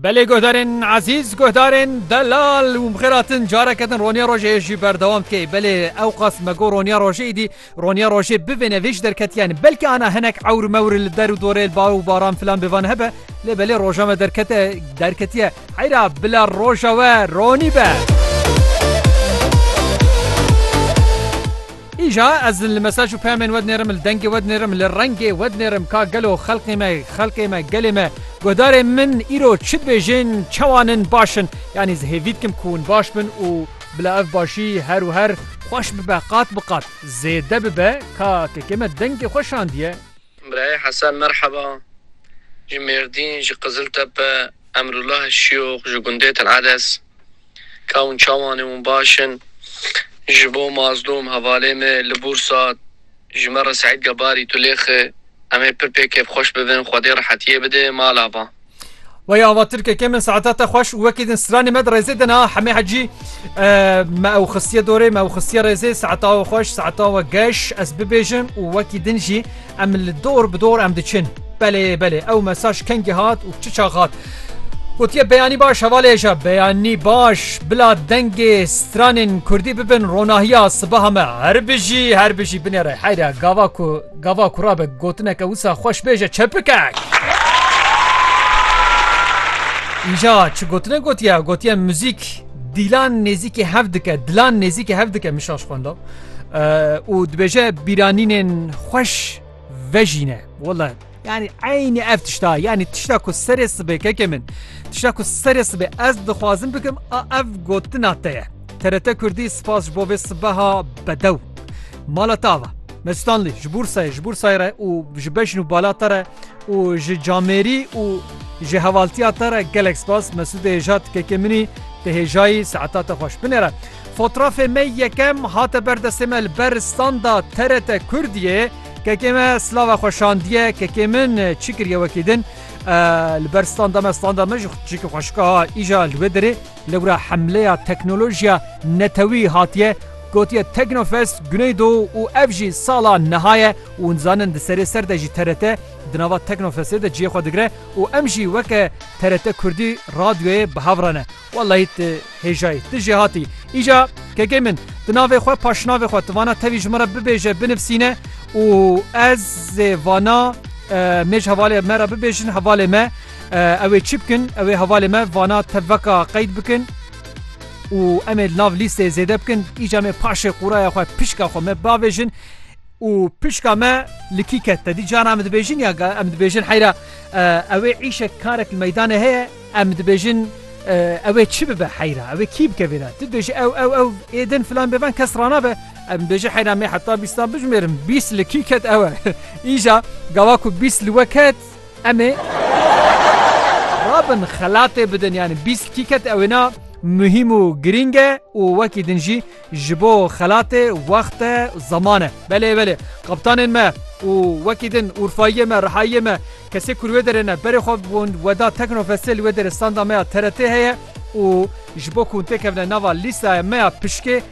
Belê guhdarên ezîz, guhdarên delal û mixêratin careke din roniya rojê jî berdewam dike. Belê ew qas me got roniya rojê êdî roniya rojê bivêne vê ji derketiyan. Belkî ana hinek ewr mewr li der û dorê li bar û baran filan bi van hebe lê belê roja me derkete derketiye. Heyra bila roja we ronî be. Îja ez li mesaj û peyamên we dinêrim, li dengê we dinêrim, li rengê we dinêrim ka gelo xelkê me, xelkê me, gelê me, guhdarên min îro çi dibêjin, çawan in, baş in. Yanî ez hêvî dikim ku hûn baş bin û bila ev başî her û her xweş bibe, qat bi qat zêde bibe ka kekê me dengê xwe şandiye. Birayê Hesen Merheba, ji Mêrdîn, ji Qiziltepe, Emrullah Şiyox, ji gundê Til Edes, Kawun Çawanê hûn baş in. Ji bo Mazlûm, hevalê me li Bûrsa, ji me re Seîd Gebarî, tu lêxi. Em ê pir pê kêfxweş bibin, Xwedê rehetiyê bide mala van. Waya ava Tirkekê min saeta te xweş û wekî din stranê me di rêzê de na hemê hecî me ew xistiye dorê me ew xistiye rêzê saeta we xweş saeta we geş ez bibêjim û wekî din jî em li dor bi dor em diçin belê belê ew mesaj kengî hat û çi çax hat Gotiye beyanî baş hevalê hêja beyanî baş bila dengê stranên Kurdî bibin ronahiya sibaha me her bijî her bijî binêre heyra gava ku Gava kura be gotineke wisa xweş bê je çepikek. Îja çi gotine gotiye? Gotiye muzîk dîlan nêzîkî hev dike, dilan nêzîkî hev dike mişaş xwendo. û dibêje bîranînên xweş vejîne. Wala yani eynî ev tişta yani tişta ku serê sibê kekê min tişta ku serê sibê ez dixwazim bikim a ev gotina te ye. TRT Kurdî spas ji bo vê sibeha bedew. Mala te ava. Mestanlî ji Bursayê ji Bursayê re û ji beşn û bala te re û ji camêrî û ji hevaltiya te re gelek spas Mesûdê hêja tikekê minî te hêjayî saeta te xweş binêre. Fotrafê me yekem hate ber destê me li ber standa TRT Kurdiyê kekê me slava xwe şandiye kekê min çi kiriye wekî din li ber standa me standa me ji çîkî xweşika îja li wê derê Lewra hemleya teknolojiya netewî hatiye gotiye Teknofest Guneydo û ev jî sala niha ye û nizanin di serê ser de jî TRT di nava Teknofestê de ciyê xwe digire û em jî weke TRT Kurdî radyoyê bi hev re ne. Wellahî tu hêjayî. Tu jê hatî. Îja kekê min di navê xwe paşnavê xwe tu vana tevî ji min re bibêje binivîsîne û ez ê vana mêj hevalê me re bibêjin hevalê me Ew ê çi bikin? Ew ê hevalê me vana teveka qeyd bikin û em ê li nav lîsteyê zêde bikin. Îca em ê paşê qûraya xwe pişka xwe me bavêjin û pişka me li kî ket te dî cana em dibêjin ya em dibêjin heyra ew ê îşek karek li meydanê heye em dibêjin ew ê çi bibe heyra ew ê kî bike vê de tu dibêjî ew ew ew ê din filan bêvan kes ranabe em dibêjin heyra me heta bîstan bijimêrin bîst li kî ket ew e îja gawa ku bîst li we ket Em ê rabin xelatê bidin yanî bîst tîket ew ê na muhîm û girîng e û wekî din jî ji bo xelatê wext e zeman e. Belê belê kaptanên me û wekî din Urfayiyê me Rihayiyê me kesê ku li wê derê ne berê xwe bûn weda Teknofestê li wê derê standa me ya TRT heye û ji bo ku hûn têkevine nava lîstaya me ya pişkê